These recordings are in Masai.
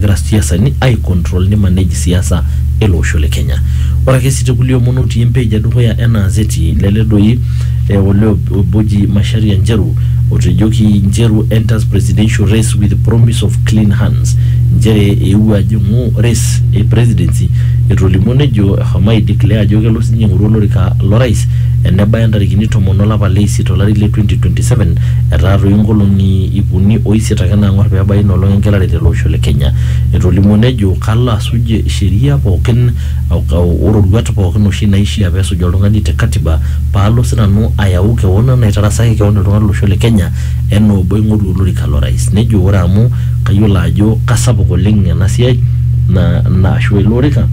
egira siasani ai control ni manage siasa ele osho le Kenya. Ore ake sii te kulie omon otii empage e dukuya ena azeti lele doi eh, olee obo oji Macharia Njeru otejoki Njeru enters presidential race with promise of clean hands nchere eewuo ajing'u race e presidency etolimuo nejo eshomo ai declare ajo kelo sininye aing'oru olorika lo rais enebaya ntarikini tomon olapa le isiet olari le 2027 Etaatoyie nkolongi iip uni o isiet ake naangor pee ebaiki ina olong engelare tele osho le Kenya. Etolimuo nejo kalo asuj sheria pookin o roruat pookin oshi naishia pee esuj oltungani te katiba paalo sinanu ayau kewon naitarasaki kewon iltunganak lo losho le Kenya enaa obo aingoru olorika lo rais. Nejo ore amu kayiolo ajo kasapuk oleng ena siai ashu ele orika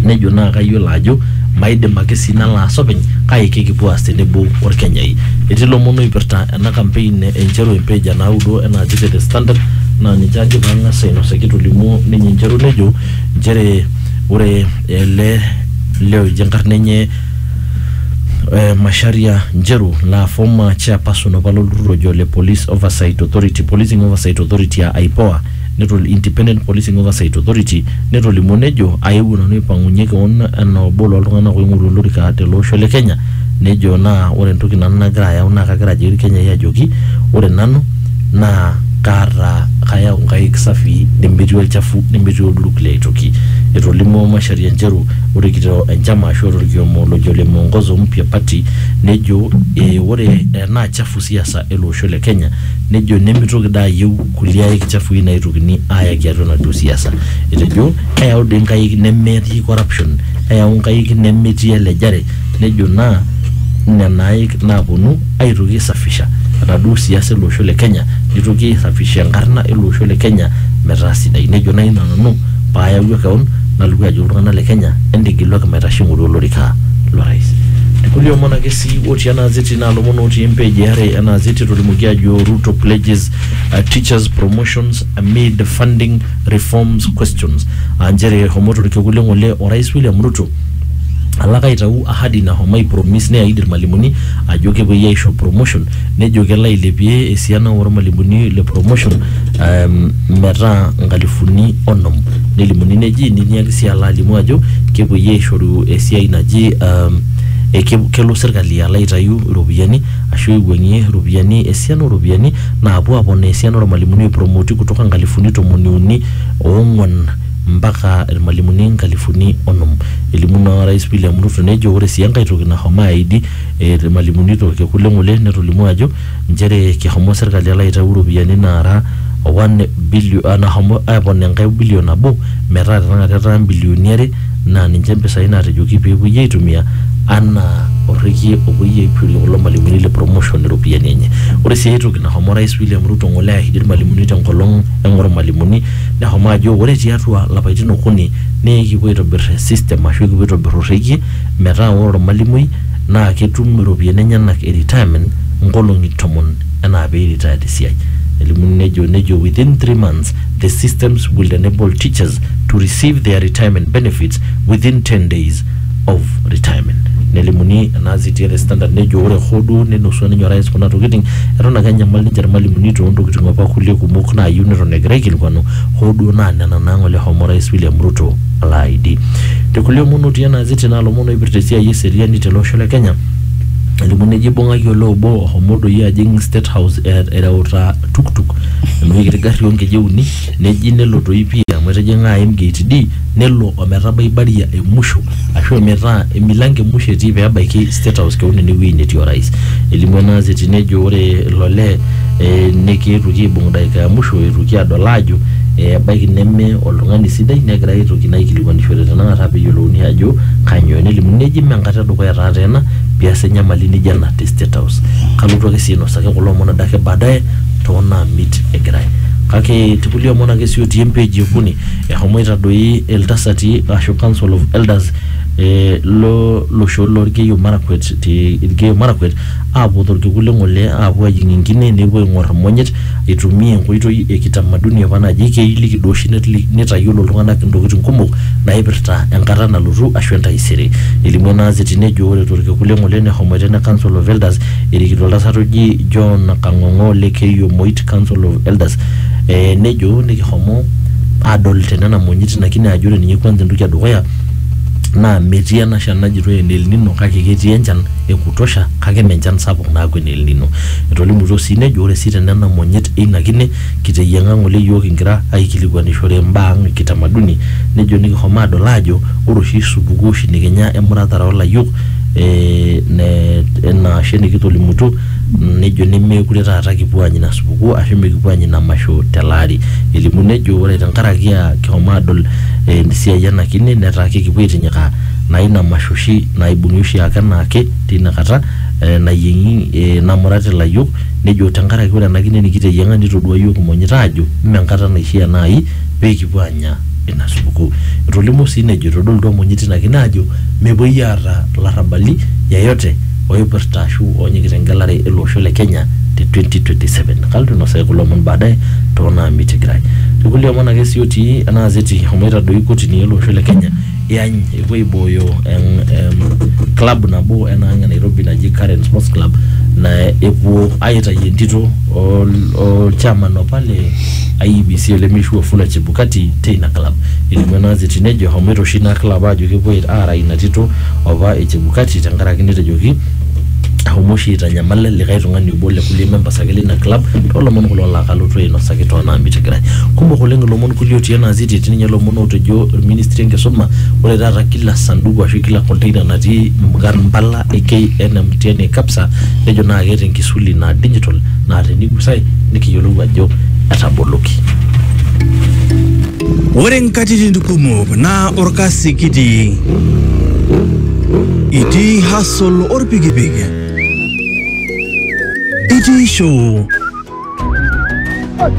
nejo naa kayiolo ajo Maidim ake sii nalo aas openy kake kikipuo aas tenebo Olkenyai. Etii lomon oipirta ena kampein e Njeru empage e naudo ena aji te The Standard naa ninche ajo pee ang'as ainosaki etolimuo ninye Njeru nejo nchere ore ele lee oji enkarna enye Macharia Njeru laa former chairperson apa lo lturrur oji ole Police Oversight Authority, Policing Oversight Authority aa IPOA. Netul Independent Policing Oversight Authority netolimuo nejo aewuo nanu aipang'unye kewon anaa obo loo ltung'anak oing'oru olorika tele osho le Kenya nejo naa ore entoki nanu nagira ayau naa kagira ajoki Ilkenyai ajoki ore nanu naa kaata kayau nkaik safii nemetii olchafu nemetii olduruk liaitoki. Etolimuo Macharia ncheru ore kito enchama ashu ore olkiomo lojo ole Muongozo Mpya Party nejo ee ore enaa chafu siasa ele osho le Kenya nejo nemitoki daa ayieu kulie aik chafui naitukini ayaki atua enaduo siasa. Etejo eyau doi nkaik nemetii corruption, eyau nkaik nemetii elejare, nejo naa nena aik naaponu aitoki aisafisha enaduo siasa ele osho le Kenya, nitoki aisafisha enkarna ele osho le Kenya metaa sidai. Nejo naa ina nanu paayawua keon nalotu ajoki iltung'anak le Kenya entigiluaki maitasho aing'oru olorika lo rais. Irkulie omon ake sii otii ena gazeti naa ilomon otii empage e are ena gazeti etolimuoki aajo Ruto pledges uh, teachers promotions amid funding reforms questions aa nchere homo torkekun le ng'ole orais William Ruto alak aitau ahadi nahomo aipromis neaid irmalimuni ajo kepuoi aisho promotion nejo kelo ailepie esiana ormalimuni le promotion um, metaa nkalifuni onom nelimuni neji niniaki sii alo alimu ajo kepuoi aishoru esiai naji um, eke- kelo serkali alo aitayu iropiyiani ashu eiwuang'ie iropiyiani esiana ooropiyiani naapuo aaponaa esiana oormalimuni oipromoti kutoka nkalifuni tomoni uni oong'wan mpaka irmalimuni nkalifuni onom. Elimu ina Orais William Ruto nejo ore sii enkae toki nashomo aaidi irmalimuni torkekun le ng'ole netolimuo ajo nchere keshomo serkali alo aitau iropiyiani naara one billion nashomo aponaa enkae billion nabo metaa tenakata etaa imbilioni are naa ninche mpisai naatejoki pee epuoi aitumia anaa orrekie opuoi aishorie kulo malimuni le promotion iropiyiani enye. Ore sii ae toki nashomo orais William Ruto ng'ole airriki irmalimuni te nkolong eng'or irmalimuni neshomo ajo ore tiatua ilapaitin okuni naa ekipuo aitobirr system ashu ekipuo aitobirr orrekie metaa ore ormalimui naa ketum iropiyiani enyenak e retirement nkolong'i tomon enaa pee i retire te siai. Nelimu nejo within three months the systems will enable teachers to receive their retirement benefits within 10 days of retirement nelimuni enaas etii the standard nejo ore hoo duo nenusua ninye orais kuna tokiting eton ake enyamal ninche irmalimuni toontokiting apa kulie kumok naayieu neton egira aikilikuanu hoo duo naa nena naa ng'ole homo orais William Ruto alo aidi te kulie omon otii ena azeti naa lomon oipirta esiai eseriani tele osho le Kenya elimu nejo ibung'aki olee obo ohomo doi ajing state house e- ereuta tuktuk enoshi kiti garri onkeje uni neji nelo toi pii amu etijing'a aim gate D nelo ometabai baria e musho ashu ometaa emilango e musho etii pebaiki state house kewon enewueji netii orais elimu ena gazeti nejo ore ilo lee eh, nekietuoki aibung dakika ya musho etuoki adol aajo eh, ebaiki neme oltung'ani sidai negirae aitoki naa aikilikuanishore tenakata peyiolouni ajo kanyoo nelimu neji mee enkata edukuya taata ena pias enyamali nijo ena te State House. Kalotu ake sii ainosaki kulo omon adake baadaye too naamit egirai. Kake te kulie omon ake sii otii empeji e okuni, ehomoita doi iltasati ashu council of elders eh lo losho loo Lkeiyo Marakwet te Lkeiyo Marakwet aapuo to lkekun le ng'ole aapuo aajing enkine nepuo aing'or imonyit aitumia enkoitoi e kitamaduni apa naji keiliki duo oshi netli- nitayiolo iltung'anak intokitin kumok naipirta enkata nalotu ashu entaisere. Elimu ena azeti nejo ore torkekun le ng'ole nehomoita ene Council of Elders erikito oltasat oji John Kang'ong'o le Keiyo Moit Council of Elders eh, nejo nikihomo adol te nena monyit ina kine ajo ore ninye kwanza entoki e dukuya naa metii ena shan najitoi ene El Nino kake ketii enchan e kutosha Kake mme enchan sapuk naaku ene El Nino. Etolimutuo sii nejo ore sii te nena monyit eina kine kiteyieng'a ng'ole iyiook kingira aaikilikuanishore imbaa ang e kitamaduni nejo nikishomo aadol aajo ore oshi supukuu oshi nikinya emuratare oo layiok ena ashe nikitolimutuo nejo nemeekure taata kipuo aanya ina supukuu ashu mikipuo aanya ina masho tele ari. Elimu nejo ore tenkaraki aa kishomo aadol esiai ena kine netaa kekipuo aitinyikaa naa ina masho oshi naibung'i oshiake enaake. teina kata eh, nayieng'i eh, namurat ilayiok nejo tenkaraki ore ena kine nikiteyieng'a nitodua iyiook imonyit aajo mme enkata naishia naai pee kipuo aanya ina supukuu etolimuo sii nejo etodolutua imonyit ina kine aajo mepuoi aata larrabali yeyote oipirta ashu oonyikita engelare ele osho le Kenya te 2027 kalotu ainosaki kulo omon baadaye toonaamitigirai tekulie omon ake sii otii ena azeti eshomo aitadoi kotini ele osho le Kenya iany epuo aibooyo eng- em, club nabo enaang e nairobi naji current sports club na epuo aitayu entito ol- olchairman apa le iebc ole mishu wafula chebukati teina club elimu ena gazeti nejo ehomoito oshi ina club ajo kepuo aara ina tito apa e chebukati tenkaraki netejoki ahomo oshi aitanyamala likae tung'ani obo le kulie members ake leina club toolomon kulo laa kalotu ainosaki toonaamiti kira kumok oleng ilomon kulie otii ena aziti etii ninye ilomon ootejo ministry enkisuma ore taata kila sanduku ashu kila container natii nkarn impala e KNMTN mtihani e KAPSA nejo naa keeta enkisuli naa digital naa tenigusae nikiyiolou ajo etaboloki. Ore nkatitin kumok naa olkasi kitii. Itii hustle olpikipik. Itii show.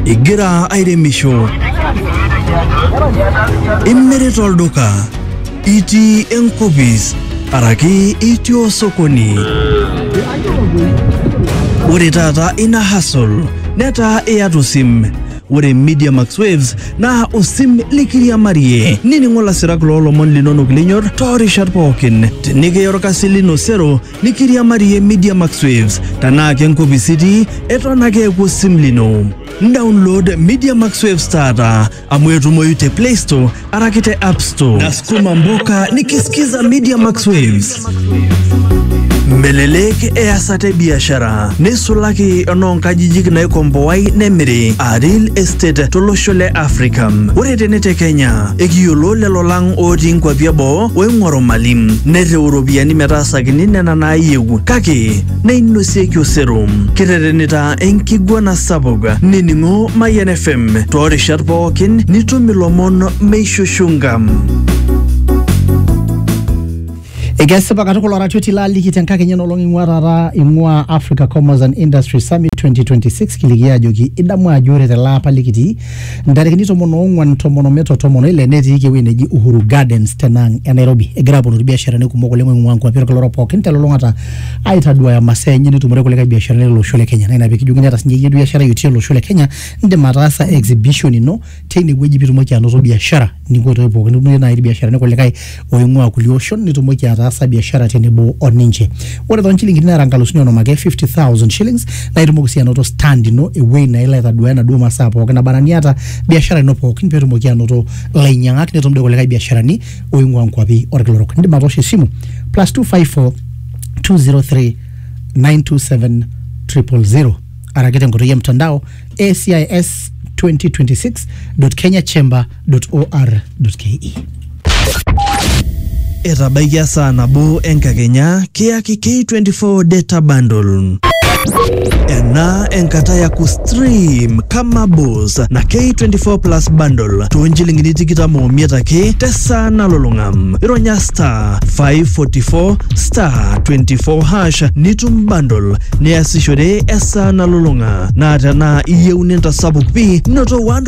Igira airemisho. Imirita olduka. Itii enkopis araki itii osokoni. Ore taata ina hustle netaa iyata osim. Ore Media Max Waves naa osim likiriamarie. Nining'o lasirak loo lomon linonok linyor too rishat pookin. Tenikiya olkasi lino sero nikiriamarie Media Max Waves. Tenaa ke nkopis itii, eton ake eeku osim lino. Download Media Max Waves taata amu etumoyu te Play Store Arakite App Store. Nasukuma mboka nikisikiza Media Max Waves. Melelek easata biashara neisulaki enoonkajijik naikomboai nemiri a real estate tolosho le Africa. Ore tene te Kenya ekiyiolo lelo lang otii nkuapi eboo oing'oru mali nerriu iropiyiani metaasakini nena naayieu kake neinosieki osero kiterenita enkiguana sapuk nining'o Mayian FM toorishat pookin nitum ilomon meishushunga. Ekesipa katukul oratioti laaliki tenkakenya enolong ing'ua taata ing'ua Africa Commerce and Industry Summit 2026 kiliki ajoki idamu ajo ore tele apa likitii ntarikini tomon oong'uan tomon omiet o tomon oile netiiki ewueji neji Uhuru Gardens tenaang e Nairobi egira aponu irbiasharani kumok oleng oing'ua nkuapi olkila orok pookin telulung'ata aitaduaya masaa enye nitumore kulikae biasharani lele osho le Kenya naa ina pikijoki eniata sinye iyie biashara itii ele osho le Kenya indim ataasa exhibition ino teine wueji pitumoki anoto biashara ninko toi pookin nitumie naaji irbiasharani kulikae oing'ua kulie oshon nitumoki ataasa biashara tenebo o ninche ore toonchilingini naara nkalusuni onom ake 50000 shillings naa itumoki sii anoto stand ino ewuei naa ilo aitaduaa enaduo masaa pookin naba anaa niata biashara ino pookin peetumoki anoto ilainyang'ak netum doi kulikae biasharani oing'ua nkuapi orkila orok indim atoosho esimu plus 254 203 927 000 araki tenkoitoi e mtandao ACIS 2026.kenyachamber www.ncb.or.ke. Etabaikia saa nabo enkakenya kiyaki K24 data bundle. Ena enkata ya kustream kama boss na K24 plus bundle toonchilingini tikitam omiet ake tesaa nalulung'a. Ironya star 544 star 24 hash nitum bundle niasishore esaa nalulung'a. Naa tenaa iyieu nintasapuk pi noto 1